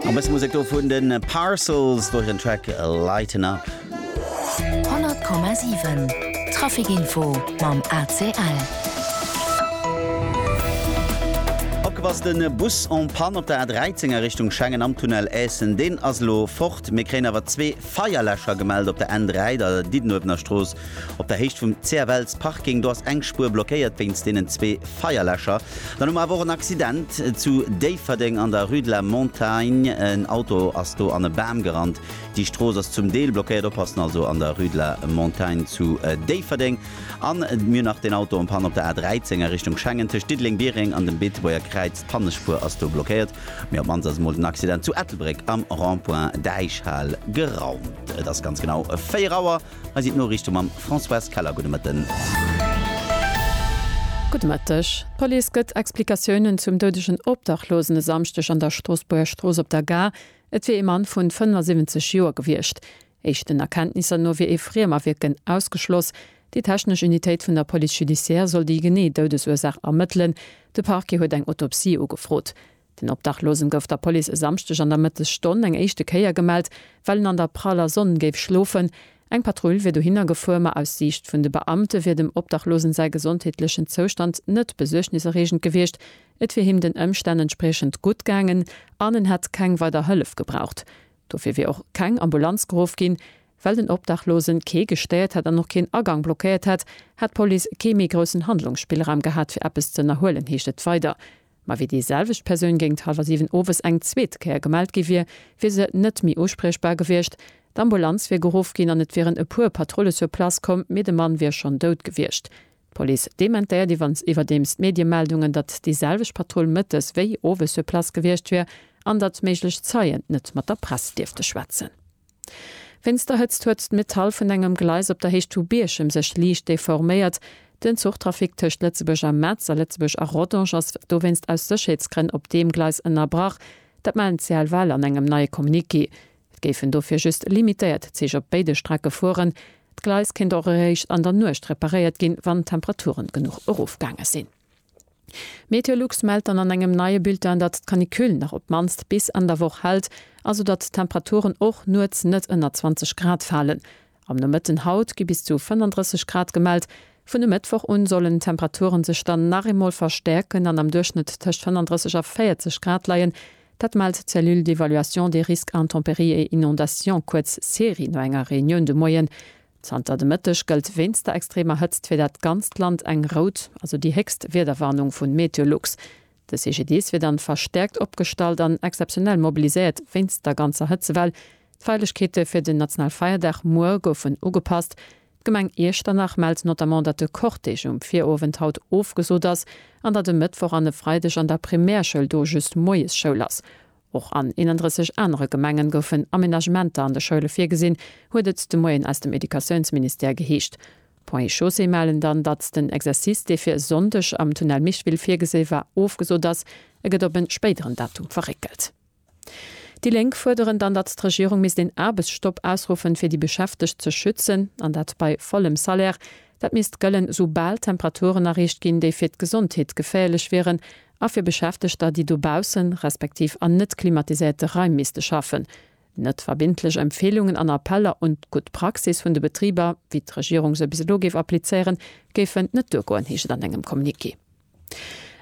An bësse Musek do vun de Parcels duerch den Track Lighten Up. 100,7 Trafic Info mam ACL. Opgepasst, den Bus en panne op der A13 a Richtung Schengen am Tunnel Essen, deen ass elo fort. Mir kréien awer zwee Feierläscher gemellt op der N3, der Diddenuewener Strooss op der Héicht vum CFL's Parking. Do ass eng Spuer blockéiert wéinst deenen zwee Feierläscher. Dann hu mer awer och en Accident zu Déifferdeng an der Rue de la Montagne. En Auto ass do an e Bam gerannt. Déi Strooss ass zum Deel blockéiert. Oppassen also an der Rue de la Montagne zu Déifferdeng. An mir hunn nach den Auto en Panne op der A13 a Richtung Schengen. Tëscht Diddeleng-Biereng an dem Beetebuerger Kräiz, d'Pannespuer ass do blockéiert. Mee op d'mannst ass emol den Accident zu Ettelbréck am Rond-point Däichhal geraumt. Et ass ganz genau 4 Auer. Hei sinn d'Noriichte mam Françoise Keller. Gudde Mëtten. Gudde Mëtteg. D'Police gëtt Explikatiounen zum doudegen Obdachlosen e Samschdeg an der Stroossbuerger Strooss op der Gare. Et wier ee Mann vu 75 Joer gewiescht. Éischten Erkenntnisser no wier ee Friemawierken ausgeschloss. Déi technesch Unitéit vun der Police judiciaire soll déi genee Doudesursaach ermëttelen. De Parquet huet eng Autopsie ugefrot. Den Obdachlosen gouf der Police e Samschdeg an der Mëttesstonn eng éischte Kéier gemellt, well en an der praller Sonn géif schlofen. Eng Patrull wier dohinner gefuer, ma aus Siicht vun de Beamte wier dem Obdachlosen säi gesondheetlechen Zoustand net besuergniserreegend gewiescht. Et wier him den Ëmstänn entspriechend gutt gaangen an en hätt keng weider Hëllef gebraucht. Dofir wier och keng Ambulanz geruff ginn. Well den Obdachlose kee gestéiert hätt an och keen Agang blockéiert hätt, hätt d'Police kee méi groussen Handlungsspillraum gehat, fir eppes z'ënnerhuelen, heescht et weider. Mä wéi déi selwecht Persoun géint hallwer siwen owes eng zweet Kéier gemellt gi wier, wier se net méi uspriechbar gewiescht. D'Ambulanz wier geruff ginn an et wieren e puer Patrulle sur place komm, mee de Mann wier schonn dout gewiescht. D'Police dementéiert iwwerdeems d'Mediemeldungen, datt déi selwecht Patrull mëttes wéi owes sur place gewiescht wier an datt méiglech Zeien net mat der Press dierfte schwätzen. Wéinst der Hëtzt huet d'Metall vun engem Gleis op der Héicht vu Bierchem sech liicht deforméiert. Den Zuchtrafic tëscht Lëtzebuerg a Metz a Lëtzebuerg a Rodange ass dowéinst aus Sécherheetsgrënn op deem Gleis ënnerbrach. Dat melden d'CLVL an engem neie Communiqué. Et géifen dofir just limitéiert Zich op béide Strecke fueren. D'Gleis kéint och eréischt an der Nuecht reparéiert ginn, wann d'Temperaturen genuch erofgaange sinn. Meteolux mellt dann an engem neie Bulletin, datt d'Canicule nach op d'mannst bis Enn der Woch hält, also datt d'Temperaturen och nuets net ënner 20 Grad falen. Am Nomëtten haut gi bis zu 35 Grad gemellt. Vun e Mëttwoch un sollen d'Temperaturen sech dann nach eemol verstäerken an am Duerchschnëtt tëscht 35 a 40 Grad leien. Dat mellt d'Cellule d'évaluation des risques intempéries et inondations, kuerz CERI, no enger Reunioun de Moien Zanter de Mëtteg gëllt wéinst der extremer Hëtzt fir dat ganzt Land eng rout, also déi héchst Wiederwarnung vun Meteolux. De CGDIS wier dann verstäerkt opgestallt an exzeptionell mobiliséiert wéinst der ganzer Hëtzewell. D'Feierlechkeete fir den national Feierdag muer goufen ugepasst. D'Gemeng Iechternach mellt notamment, datt de Cortège um Virowend haut ofgesot ass an datt e Mëttwoch an e Freideg an der Primärschoul do just Moiesschoul ass. Och an 31 anere Gemenge goufen Amenagementer an de Schoule virgesinn, huet et de Moien aus dem Educatiounsministère geheescht. Ponts et Chaussées mellen dann, datt den Exercice, dee fir e Sonndeg am Tunnel Micheville virgesi war, ofgesot ass. E gëtt op en spéideren Datum verréckelt. Déi Lénk fuerderen dann, datt d'Regierung misst een Aarbechtsstopp ausruffen, fir déi Beschäftegt ze schützen, an dat bei vollem Salaire. Dat misst gëllen, soubal Temperaturen erreecht ginn, déi fir d'Gesondheet geféierlech wieren, a fir Beschäftegter, déi dobaussen, respektiv an net klimatiséierte Raim misste schaffen. Net verbindlech Empfeelungen an Appeller un d'gutt Praxis vun de Betriber, wéi d'Regierung se bis elo géif applizéieren, géifen net duergoen, heescht et an engem Communiqué.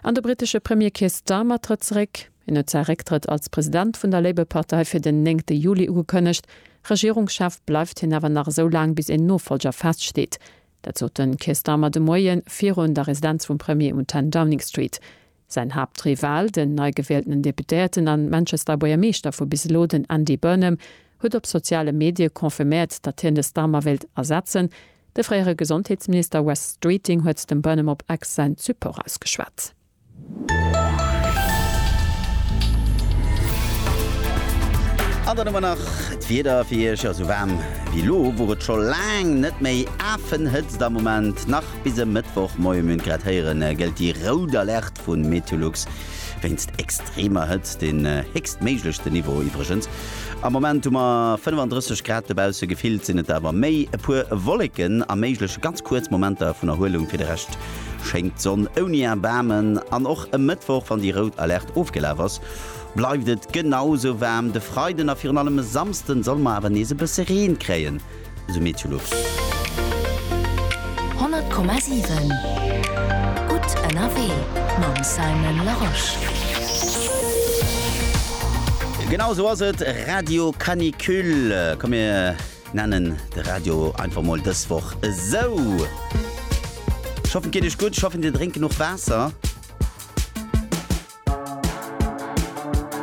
An de brittesche Premier Keir Starmer trëtt zeréck. Hien huet säi Récktrëtt als President vun der Labour-Partei fir den néngte Juli ugekënnegt. Regierungschef bleift hien awer nach esou laang, bis een Nofollger feststeet. Dat sot de Keir Starmer de Moie virun der Residenz vum Premier um 10 Downing Street. Säin Haaptrival, den neigewielten Deputéierten an Manchester Buergermeeschter vu bis elo, den Andy Burnham, huet op soziale Medie confirméiert, datt hien de Starmer wéilt ersetzen. De fréiere Gesondheetsminister Wes Streeting huet dem Burnham op X säin Support ausgeschwat. An dann hu mer nach d'Wieder fir Iech. Esou waarm wéi elo wor et scho laang net méi. Afenhëtzt am Moment, nach bis e Mëttwoch Moie mün. Grad héieren gëllt déi rout Alerte vu Meteolux wéinst extremer Hëtzt, den héchstméiglechsten Niveau iwwregens. Am Moment hu mer 35 Grad dobausse, gefillt sinn et der awer méi. E puer Wolleken a méiglech ganz kuerz Momenter vun Erhuelung fir de Rescht Schéngt d'Sonn ouni Erbaarmen an och e Mëttwoch, wann déi rout Alerte ofgelaf ass, bleift et genau sou waarm. De Freiden a virun allem e Samsden solle mer awer nees e bësse Reen kréien, esou Meteolux. 100,7 Gutt ënnerwee mam Simon Larosche. Genau sou ass et, Radio Canicule. Komm mir Nennen de Radio einfach mol dës Woch esou. Ech hoffen et geet iech gutt, ech hoffen dir drénkt genuch Waasser.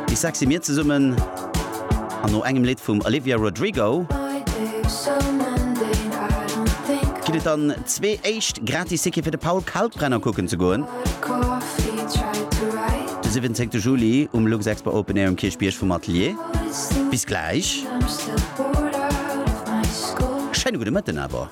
Déi sexy Mir zesummen an no engem Lidd vum Olivia Rodrigo ginn et dann zwee éischt gratis Tickete fir de Paul Kalkbrenner kucken ze goen de 17 Juli um Luxexpo Open Air um Kierchbierg vum Atelier. Bis gläich. Schéine gudde Mëtten awer.